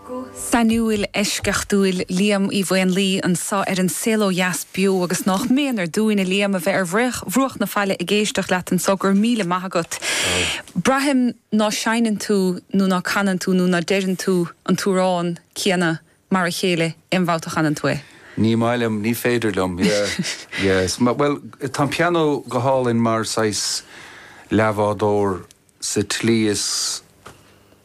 Guth sainiúil, eisceachtúil Liam Uí Mhaonlaí anseo ar An Saol Ó Dheas Beo agus nách méanar dúinn, a Liam, a bheith ar bhruach na faille ag éisteacht leat anseo, go raibh míle maith agat. Braithim ná seinneann tú nó ná canann tú nó ná deireann tú an t-amhrán céanna mar a chéile aon bhabhta a chanann tú é. Ní maith liom, ní féidir liom, yeah, yeah. Bhuel, tá an pianó go hálainn mar saghas leathbhádóir. sa tslí is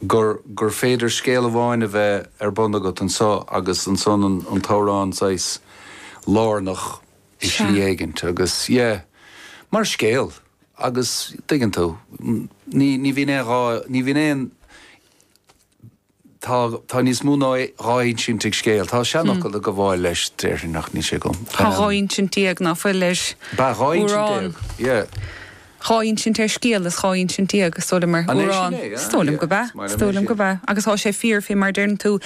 gur gur féidir scéal amháin a bheith ar bun agat anseo agus ansan an t-amhrán saghas lárnach i slí éigint agus yeah mar scéal agus tuigeann tú ní bhíonn aon dhá ní bhíonn aon Tá, tá níos mó ná dhá insint ag scéal. Tá seanfhocal ag gabháil leis, déarfainn, ach níl sé agam. Tá dhá insint déag, ná fuil, ar amhrán, dhá insint déag, yeah. Dhá insint ar scéal is dhá insint déag, is dóigh liom, ar amhrán. An é sin é? Is Ah, dóigh liom yeah, gurb ea, is maith is liom é sin. Is dóigh liom gurb ea. Agus tá sé fíor, fé mar a deireann tú.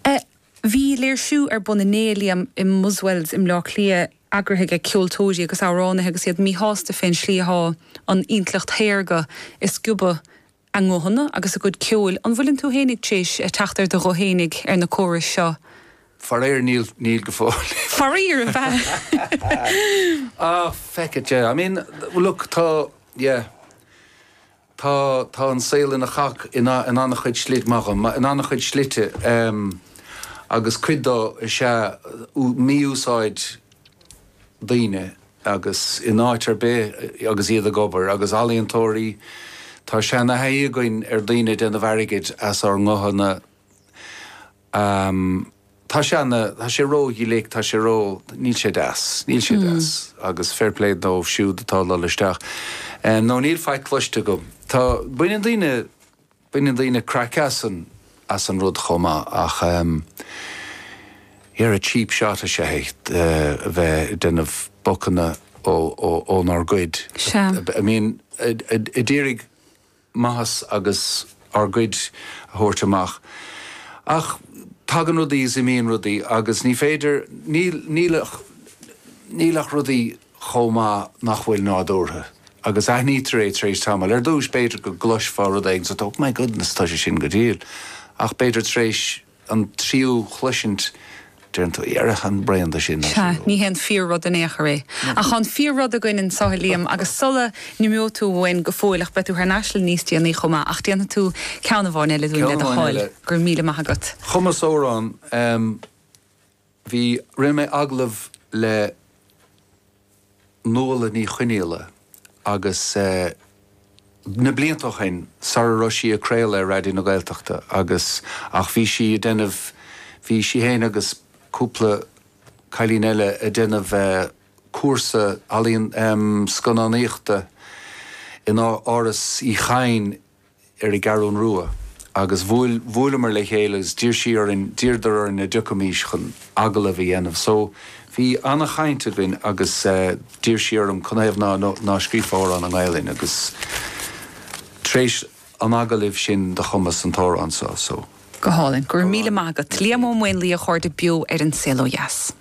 Eh, bhí léirsiú ar bun inné, a Liam, i mBuswells i mBleá Cliath eagraithe ag ceoltóirí agus amhránaithe agus iad míshásta fén slí atá an intleacht shaorga ag sciobadh a nguthanna agus a gcuid ceoil. An bhfuileann tú féin tar éis teacht ar do ghuth fhéinig ar na córais seo? Faraoir, níl, níl go fóill. Faraoir, ab ea? Ah, feck it, yeah. I mean, look, tá, yeah, tá, tá an saol ina chac in, in an-chuid slite, maith dhom, in an-chuid slite, em, agus cuid de is ea mí-úsáid, daoine agus in áit ar bith agus iad ag obair. Agus ealaíontóirí, tá seana-thaithí againn ar daoine ag déanamh airgid as ár nguthanna. Tá sé, tá sé ró-ghlic, tá sé ró, níl sé deas, níl sé deas agus fair play dóibh siúd atá ag dul isteach. No, níl faic cloiste agam. Tá, baineann daoine. Baineann daoine craic as an rud chomh maith ach dhera cheap shot is ea é, bheith ag déanamh bocanna ónár gcuid, I mean a d'iarraidh maitheas agus ár gcuid a thabhairt amach ach tagann rudaí is imíonn rudaí agus ní féidir, níl ach rudaí. chomh maith nach bhfuil nádúrtha. Agus aithnítear é tar éis tamaill. Ar dtús, b'fhéidir go gcloisfeá rud éigin sa Oh my goodness, tá sé sin go diail. Ach b'fhéidir tar éis an tríú chloisint, deireann tú Dhera, táim bréan de sin, Sea, ní hé an fíor-rud in aon chor é. Ach tá an fíor-rud againn anseo, a Liam, agus sula n-imeoidh tú uainn go fóill, ach beidh tú thar n-ais níos déanaí chomh maith, ach déanfaidh tú ceann amháin eile dúinn, le do thoil. Go raibh míle maith agat. Chumas amhrán. Bhí, rinne mé agallamh le Nuala Ní Chonghaile agus na blianta ó shin sara raibh sí ag craoladh ar Raidió na Gaeltachta agus, ach bhí sí ag déanamh, bhí sí féin agus cúpla cailín eile ag déanamh cúrsa ealaíon, em, scannánaíochta in Áras Uí Chadhain ar an gCeathrún Rua agus bhuail, bhuaileamar le chéile agus d'iarr sí orainn, d'iarradar orainn an dtiocfaimís chun agallamh a dhéanamh. So, bhí ana-chaint againn agus eh, d'iarr sí orm, Canathaobh ná, ná, ná scríobhfá amhrán i nGaelainn agus tar éis an agallaimh sin do chumas an t-amhrán so. So. Go hálainn. Go raibh míle maith agat. Liam Ó Maonlaí, a chairde beo ar An Saol Ó Dheas.